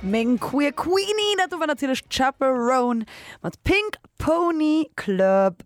Meng Queer Queenie, dat do war natierlech d'Chaperone mat Pink Pony Club.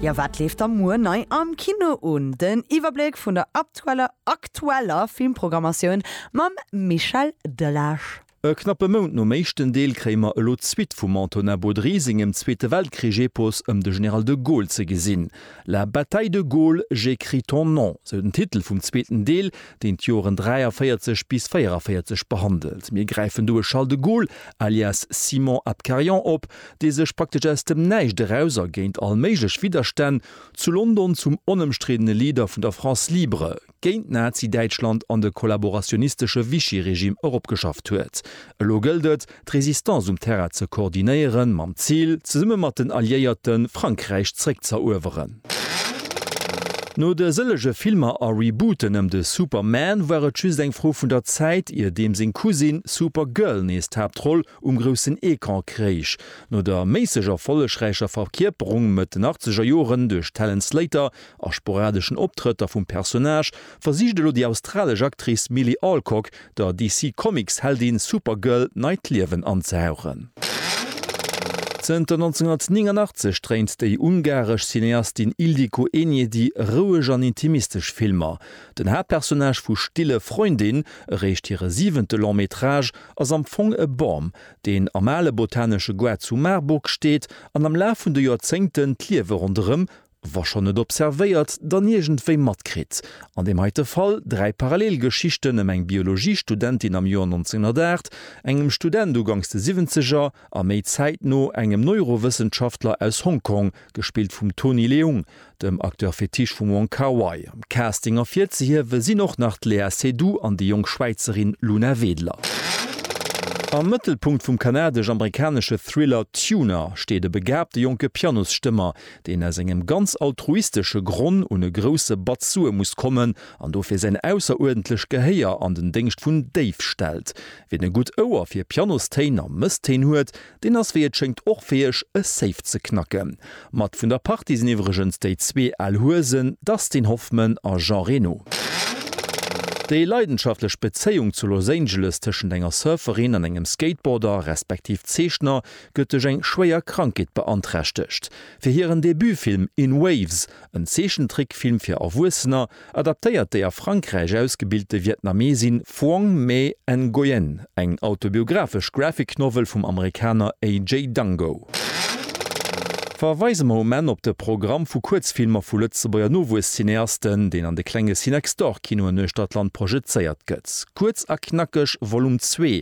Jo, wat leeft da muer nei am Kino un? Den Iwwerbléck vun der aktueller aktueller Filmprogrammatioun mam Michel Delage. E knappe Mount nom éischten Deel kréie mer elo d'Suite vum Antonin Baudry sengem Zweete Weltkrich-Epos ëm de General de Gaulle ze gesinn. La bataille de Gaulle, j'écris ton nom, sou den Titel vum zweeten Deel, deen d'Joren 43 bis 44 behandelt. Mir gräifen do e Charles de Gaulle, alias Simon Abkarian, op, dee sech praktesch aus dem Näischt eraus a géint all méiglech Widderstänn zu London zum onëmstriddene Leader vun der France libre, géint Nazi-Däitschland an de kollaborationistesche Vichy-Regime eropgeschafft huet. Elo gëllt et, d'Résistance um Terrain ze koordinéieren, mam Zil, zesumme mat den Alliéierten, Frankräich zréckzëerueweren. No de sëllege Filmer a Rebooten ëm de Superman war et just eng Fro vun der Zäit, ier deem seng Cousine Supergirl nees d'Haaptroll um groussen Ecran kréich. No der méisseg erfollegräicher Verkierperung Mëtt den Achtzegerjoren duerch d'Helen Slater, A sporadeschen Optrëtter vum Personnage versicht elo déi australesch Actrice Milly Alcock der DC-Comics-Heldin Supergirl neit Liewen anzehauchen. Zënter 1989 dréint déi ungaresch Cineastin Ildikó Enyedi roueg an intimistesch Filmer. Den Haaptpersonnage vu Stille Freundin ereecht hire siwente Long Métrage ass am Fong e Bam, deen am ale botanesche Goart zu Marburg steet an am Laf vun de Joerzéngten d'Liewe ronderëm wa schonn net observéiert, dann iergendwéi matkritt, an deem heite Fall dräi parallel Geschichten ëm eng Biologiestudentin am Joer 1908, engem Student uganks de Siwwenzeger a méi zäitno engem Neurowëssenschaftler aus Hong Kong, gespillt vum Tony Leung, dem Acteur fétiche vum Wong Kar-wai. Am Casting ervirzehiewe sinn och nach d'Léa Seydoux an déi jonk Schwäizerin Luna Wedler. Am Mëttelpunkt vum kanadesch-amerikanesche Thriller Tuna steet e begaabte jonke Pianosstëmmer, deen aus engem ganz altruistesche Gronn un e grousse Batz Sue muss kommen an dofir säin ausseruerdentlech Gehéier an den Déngscht vun Dave stellt. Wien e gutt Ouer fir Pianostéin a Mësstéin huet, deen ass wéi et schéngt och fäeg, e Safe ze knacken. Mat vun der Partie sinn iwwregens déi zwee al Huesen Dustin Hoffman a Jean Reno. Déi leidenschaftlech Bezéiung zu Los Angeles tëschent enger Surferin an engem Skateboarder, respektiv Zeechner, gëtt duerch eng schwéier Krankheet beanträchtegt. Fir hiren Debutfilm In Waves, en Zeechentrickfilm fir Erwuessener, adaptéiert déi a Frankräich ausgebilte Vietnamesin Phuong Mê Nguyen eng autobiographesch Graphic Novel vum Amerikaner AJ Dango. Verweise mer um Enn op de Programm vu Kuerzfilmer vu Lëtzebuerger Nowuescineasten, deen an de klenge Cinextor-Kinoen uechter d'Land projezéiert gëtt. Kuerz a knackeg, Volume Zwee,